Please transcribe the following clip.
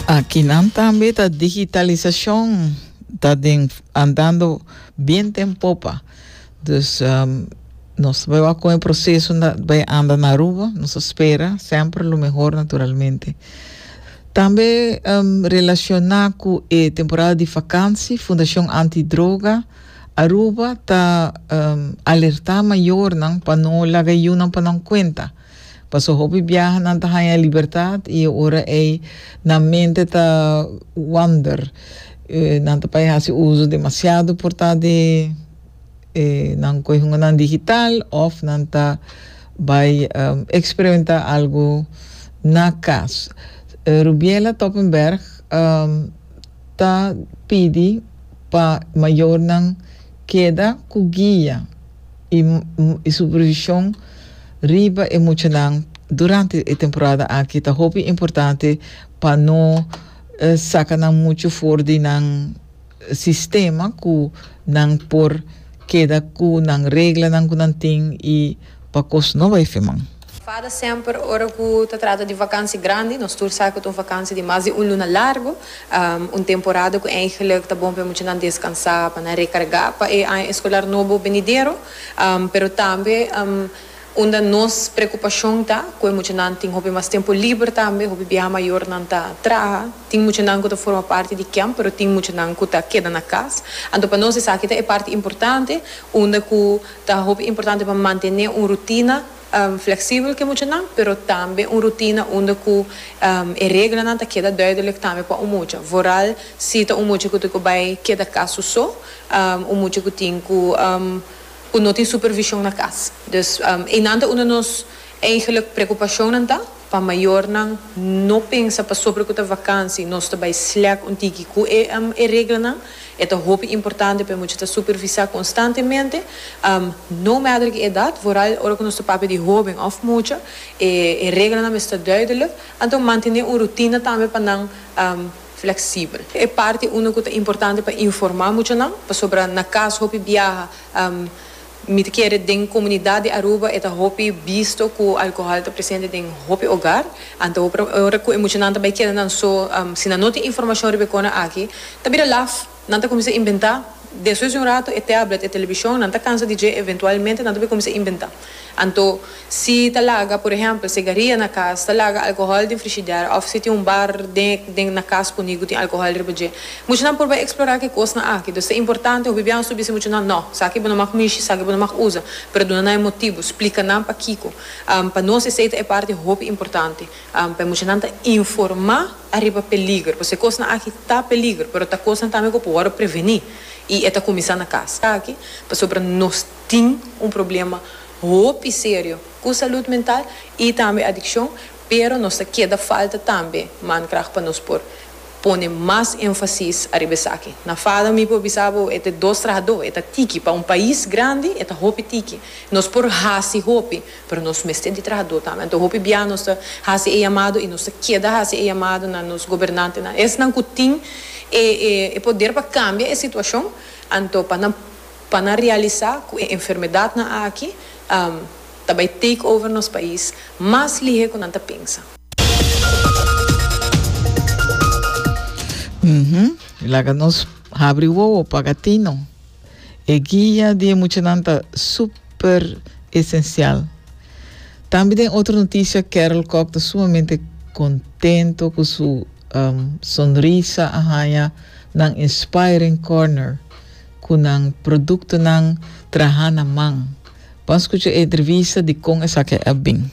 Akinan tambe ta digitalisacion ta den andando bien den popa. Dus um, nos bai wak con e proceso na, bai anda na Aruba. Nos a spera semper lo mejor naturalmente. Tambe um, relaciona cu e temporada di vakansi, Fundacion Antidroga Aruba ta um, alerta mayornan pa no laga yunan pa nan cuenta. Paso hopi biaha nan ta haña e libertad y e ora ey nan mente ta wander. Nan ta pai haci uzo demasiado por ta de e nan coyunganan digital of nan ta bay experimenta algo na cas. Rubiela Toppenberg. ta pidi pa mayornan keda ku guia i supervishon riba e muchanan durante e temporada aki ta hopi importante pa no saka nan muchu for di nan sistema ku nan por keda ku nan reglanan ku nan tin i Pa kos no bai fe man. Fada semper ora ku ta trata di vakansi grandi, nos tur sa ku ta un vakansi di mas di un luna largu, un temporada ku eingelik ta bon pa e muchanan deskansá, pa nan rekargá pa e aña eskolar nobo benidero, pero tambe unda nos preokupashon ta ku e muchanan tin hopi mas tempu liber tambe, hopi biaha mayornan ta traha, tin muchanan ku ta forma parti di kèmp pero tin muchanan ku ta keda na kas, anto pa nos esaki ta e parti importante unda ku. Ta hopi importante pa mantene un rutina fleksibel ku e muchanan, pero tambe un rutina unda ku e reglanan ta keda duidelek tambe pa un mucha. Vooral si ta un mucha ku ta ku bai keda kas su so, un mucha ku tin ku ku no tin supervishon na kas. Dus einan ta unda nos. Eigenlijk preocupacionnan ta pa mayornan no pensa pasobra cu ta vakantie nos ta bay slecht un tiki cu e reglanan. E ta hopi importante pa e mucha ta supervisa constantemente, no matter ki edad, vooral ora cu nos ta papia di hoben of mucha. E reglanan mester duidelijk, anto mantene un rutina tambe pa nan flexibel. E parti uno cu ta importante pa informa muchanan, pasobra na cas hopi biaha. Mi ta kere den komunidat di Aruba e ta hopi bisto ku alkohòl ta presente den hopi ogar. Anto hopi ora ku e muchanan ta bai keda nan so, si nan no tin informashon riba e kona aki, ta bira laf. Nan ta kuminsá inventá. Despues di un ratu e tèblet, e telebishon, nan ta kansa di dje, eventualmente nan ta bai kuminsá inventá. Anto. Si ta laga, por ehempel, segaria na cas, ta laga alcohol den frishider of si tin un bar den den na cas cu nigu tin alcohol riba dje. Muchanan por bai explora ki cosnan aki. Dos ta importante hopi biaha su bisa muchanan, No, saki bo no mag mishi, saki bo no mag usa. Pero duna nan e motibu, splica nan pakico. Pa nos esey ta e parti hopi importante. Pa e muchanan ta informa ariba peliger. Pasobra e cosnan aki ta peliger, pero ta cosnan tambe cu por wordo preveni. Y e ta cuminsa na cas. Taki, pasobra nos. tin un problema hopi serio cu salud mental y tambe adiccion, pero nos ta keda falta tambe mankracht pa nos por pone mas enfasis ariba esaki. Na Fado mi por bisa bo e ta e dos trahador, e ta tiki, pa un pais grandi e ta hopi tiki. Nos por haci hopi, pero nos mester di trahador tambe. Anto hopi bia nos ta haci e yamado y nos ta keda haci e yamado na nos gobernantenan, esnan cu tin e poder pa cambia e situacion, anto pa nan. pa nan realisá ku e enfermedadnan aki ta bai take over nos pais mas lihé ku nan ta pensa. Laga nos habri wowo pa gatino. E guia di e muchanan ta súper esensial. Tambe den otro notisia Carol Kok ta sumamente kontento ku su sonrisa a haña nan inspiring corner. ku nan produktonan traha na man. Bon skucha e entrevista di kon esaki a bin.